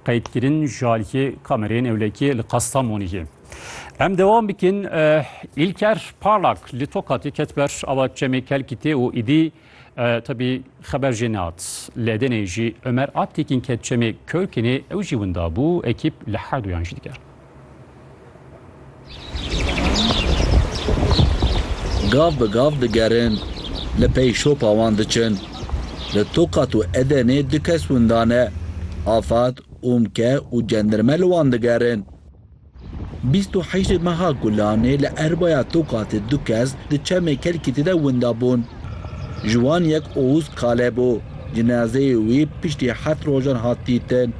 Qeydkirin ji aliyê kamereyên ewlekiyê li Kastamonî ye. Em dewam bikin. Îlker Parlak li Tokatê ket ber ava çemê kelkî tê û îdî tebî xeber jê nehat. Li Edeneyê jî Ömer Aktekin ket çemê Kökenê ew jî winda bû ekîp li her duyan jî diger. Gav bi gav digerin, li pey şopa wan diçin. Li Tokat û Edenê du kes winda ne. Afet, Umke û Cendirme li wan digerin. Bîst û heşt meha Gulanê li Erbaya Tokatê du kes di çemê Kelkîtî de winda bûn. Ji wan yek Oğuz Kale bû. Cinazeyê wî piştî heft rojan hat dîtin.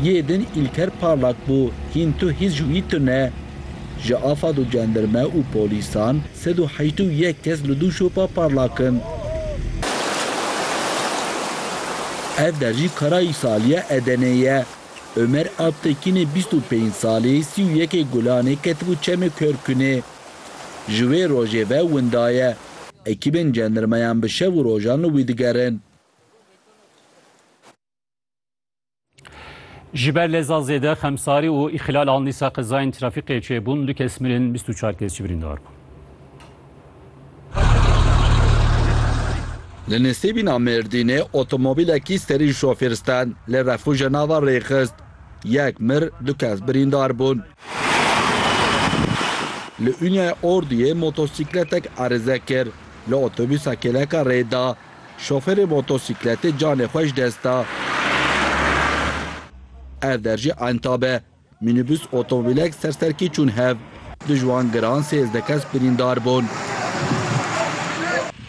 Yê din Îlker Parlak bû, hîn tu hîs ji wî tune. Ji afa du cendirme û polîsan sed û heşt û yek kes li du şopa Parlak in. Ev der jî Karaîsaliya Edenê ye. Ömer Alptekinê bîst û pênc salî sî û yekê Gulanê ketibû Çemê Körkûnê. Ji wê rojê ve winda ye. Ekîbên cendirmeyan bi şev û rojan li wî digerin. Ji ber leza zêde xemsarî û îxlal an dîsa qezayên trafîkê çêbûn, du kes mirin, bîst û çar kes jî birîndar bûn. Li Nisêbîna Mêrdînê otomobîlekî serî şofêr stand lê refuj nava rê xist. Yek mir, du kes birîndar bûn. Li Unyaya Ordiyê motosîkletek erize kir, li otobûsa kêleka rê da. Şoferê motosîkletê canê xwe ji dest da. Ev der jî enta be. Mînîbûs otomobîlek serserkî çûn hev. Di ji wan giran sêzdeh kes birîndar bûn.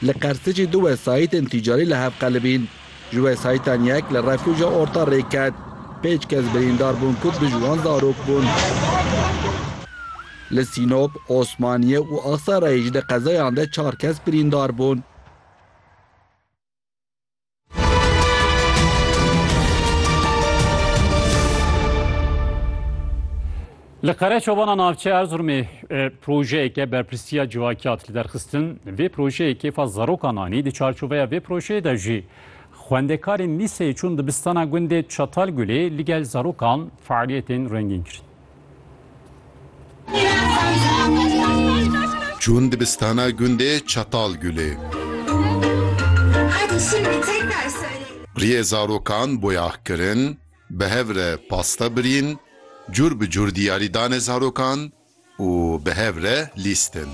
Li Qersicî du wesayîtên tîcarî li hev qelibîn. Ji wesayîtan yek li Refûja Orta rê ket. Pênc kes birîndar bûn ku duj wan zarok bûn. Li Sînop, Osmaniye û Axisarayê jî di qezayan de çar kes birîndar bûn. Li Qereçobana navçeya Erzurumê projeyeke berpirsîya civakî hat liderxistin. Vê projeyê kêfa zarokan anî. Di çarçoveya vê projeyê de jî xwendekarên lîseyê çûn dibistana gundê Çatalgulê ligel zarokan fealiyetên rengîn kirin. Çûn dibistana gundê Çatalgulê. Riyê zarokan boyah kirin. Bi hev re paste birîn, cûr bi cûr diyarî dane zarokan û bi hev re lîstin.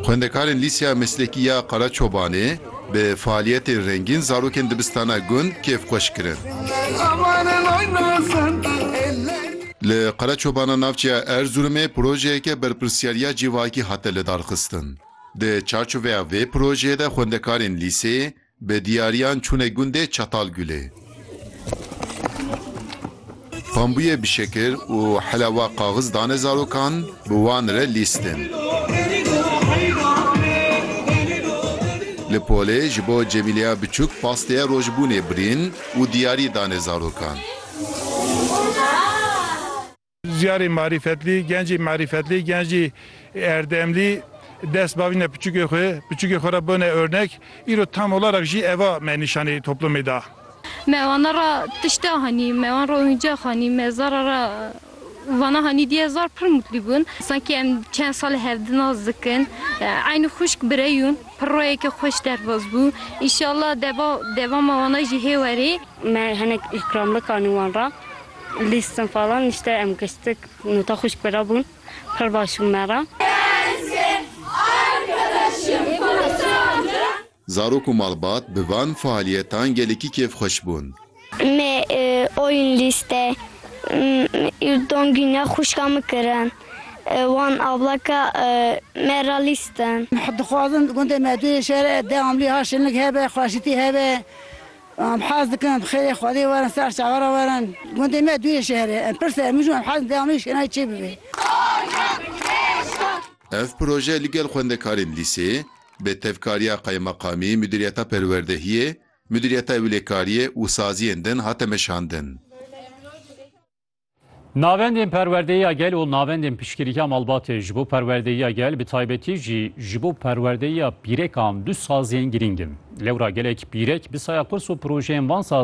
Xwendekarên Lîseya Meslekî ya Qaraçobanê bi faaliyetên rengîn zarokên dibistana gund kêf xweş kirin. Li Qaraçobana navçeya Erzurumê projeyeke berpirsiyariya civakî hate lidarxistin. Di çarçoveya vê projeyê de xwendekarên lîseyê Bi diyariyan çûne gundê Çatalgûlê. Pambûyê bi şekir û helewa kaxiz dane zarokan, bi wan re lîstin. Li polê ji bo Cemîleya biçûk pasteya rojbûnê birîn û diyarî dane zarokan. Ziyarê marîfetlî, gencê marîfetlî, gencê erdemlî dest bavîne piçûkê xwe, piçûkê xwe re bone örnek, îro tam olarak jî eva me nîşanî toplumê da. Me wana ra tişta hanî, me wan ra ûynca xanî, me zara ra wana hanî diye zar pir mutlî bûn. Sankî em çend salê hevdi nas dikin. Eynî xwişk bireyûn, pir royeke xweş derbas bû. Înşallah deva deva me wana jî hê werê. Me hinek îkramlikanî wan ra. Lîstin falan nişte em giştik nota xwişk bi re bûn pir baş bû me re. Zarok û malbat bi van faaliyetan gelekî kêfxweş bûn. Me oyun lîste û don gîne xwişka min kirin wan ablaka me re lîstin. Dixwazin gundê me duyê şerê Deamlî ha şinlik hebe, xweşîtî hebe. Em hez dikin em bi xêrê Xwedê werin ser çavera werin. Gundê me duyê şehre ye. Em pirs e, em mijûl em hezin dewamê şênayê çê bibe. Ev proje li gel xwendekarên lîseyê bi tevkariya Qaymeqamî, Mudiriyeta Perwerdehiyê, Mudiriyeta Ewlekariyê û saziyên din hate meşandin. Navendên perwerdeyiya gel û navendên piştgiriya malbatê ji bo perwerdeyiya gel bi taybetî jî ji bo perwerdeyiya pîrekan du saziyên girîng in. Lewra gelek pîrek bi saya kurs û projeyên van saziyên